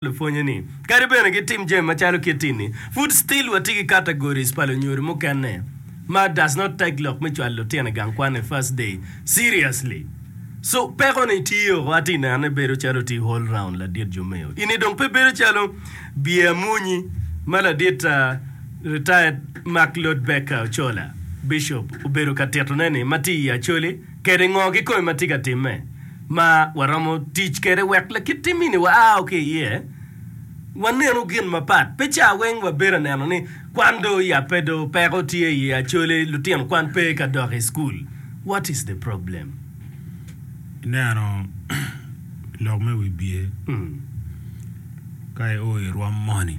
lupwonye ni kadi bene gitim jami macalo kit-ti-ni, pud still watye ki categories pa lunyodo mukene ma does not take lok me cwalo lutino i gang kwan e first day seriously. So peko ni tye oko, atye i neno ni bedo calo tye whole round ladit Jumeo. Eni dong pe bedo calo biye amwonyi ma ladit retired Mark Lord Baker Ochola, Bishop, obedo ka tito ne ni ma tye i Acholi, kede ngo kikome ma tye ka timme ma waromo tic kede wek lakit timmini wao ki iye. Waneno gin mapat. Pe ca weng wabedo aneno ni kwan do oyabbe do peko tye iye acoli lutino kwan pe ka dok i cukul. What is the problem? Ineno lok me wibye ka i o i rwom moni.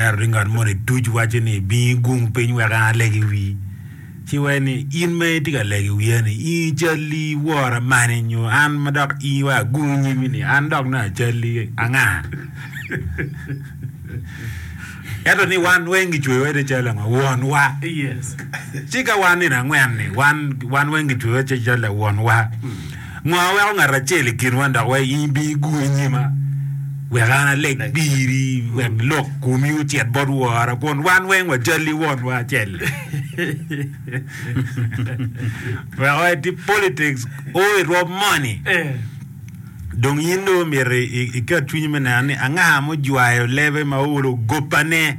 Ento ni ngat moni duc wacci ni, 'Bi igung piny wek an aleg i wii. Ci wee ni in ma itye ka lego i wiya ni, i calli iwora mani nyo an ma dok in wai agung i nyimi ni an dok nongo acalli anga? Ento ni wan weng kicweyo wede cal ango? Wonwa. Ci ka wan nino angwen-ni wan weng kicweyo wede cal wonwa. Ngo ma weko ngat acel i kinwa dok weko in ibigur i nyima, wek an aleg piri, wek lok komi ocit bot wora, kun wan weng wacalli wonwa acel. Weko eti politics o i rwom moni. Dong in dong omyero iket cwinyi me neno ni anga mujwayo lebe ma owolo gopane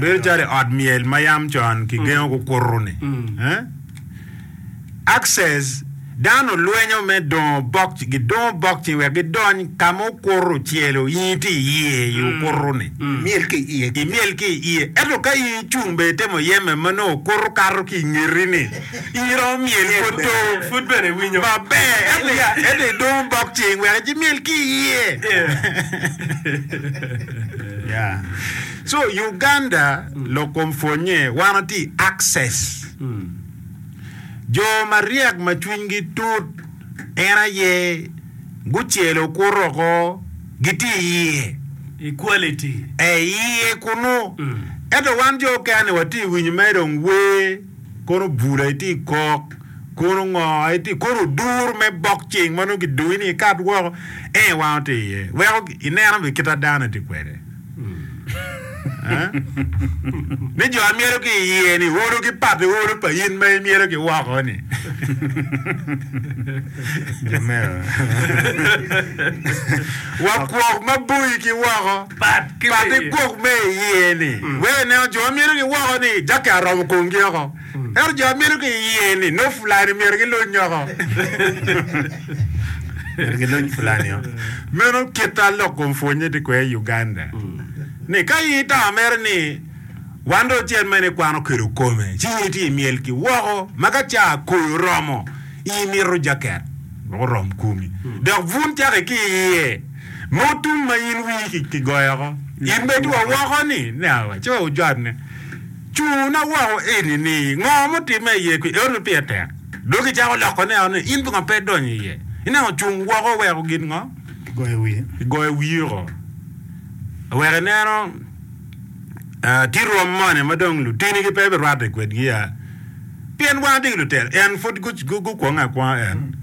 bedo calo i ot myel ma yam con kigengo kukuto-ni. Access, Dano lwenyo me dongo bok, gidongo bok cing wek gidony ka ma okuto ocelo, i tye iye i okuto-ni. Imyel ki iye. Imyel ki iye. Ento ka in icung bene itemo yeme ma nongo okuto kato ki i ngeti-ni, in romo myel pud to. Pud bene iwinyo. Maber. Ento idongo bok cing wek imyel ki iye. So Uganda lok kom pwonnye wan watye i access jo maryek ma cwinygi tut en aye gucelo kuto ko gitye iye i quality ee iye kunu ento wan jo okene watye winyo mere dong wer. Koro bula iti ikok, kono ngo iti, koro odur me bok cing ma nongo kidoyi ni ikat woko en i wango ti iye weko ineno be kita dano iti kwede ni jo myero ki iye ni olo ki pati olo pa in ma imyero ki woko ni wakwok ma boyi ki woko Pat i gwok me iye-ni, wek ineno jo ma mito ki woko ni jaki aromo komgi oko, ento jo ma mito ki iye-ni nongo fulani myero giluny oko. Myero giluny fulani oko. Meno kit a lok kom pwonye tye kwede i Uganda. Ni ka in itamo mere ni wan dong cen mene ikwano kelo kome, ci in itye imyel ki woko ma ka ca koyo oromo in imito jaket wek orom komi. Dok bun caki ki iye. Ma otum ma in wii ki goyoko. In bed wa woko ni nyawa ci wujwabne. Cuna woko eni ni ngo mutimme iye kwi eot me pire tek. Dok i cako loko ne eno ni in pingo pe idonyo iye. Ineno cung woko weko gin ngo? Igoyo wiye. Igoyo wiye woko. Aweko ineno. Tye rwom moni ma dong lutinigi pe birwatte i kwedgi-a? Pien wan watye ki lutela, en pud gukwonge akwonga en.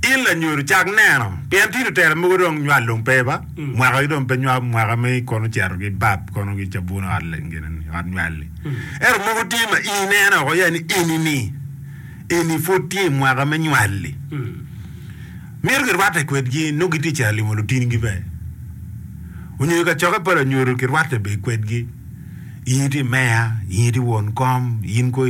In lanyodo, cak neno, pien tye lutela mogo dong nywal dong pe ba, mwakagi dong pe nywal, mwaka me kono cito ki bab kono ki cabun ot nywal-li. Ento mogo tye ma in ineno woko ya ni eni-ni, eni pud tye i mwaka me nywal-li. Myero girwatte kwedgi nongo gitye i caro limo lutinigi bene, onyo i kacokke pa lanyodo kirwatte bene kwedgi, in iti meya, in iti won kom, in kong.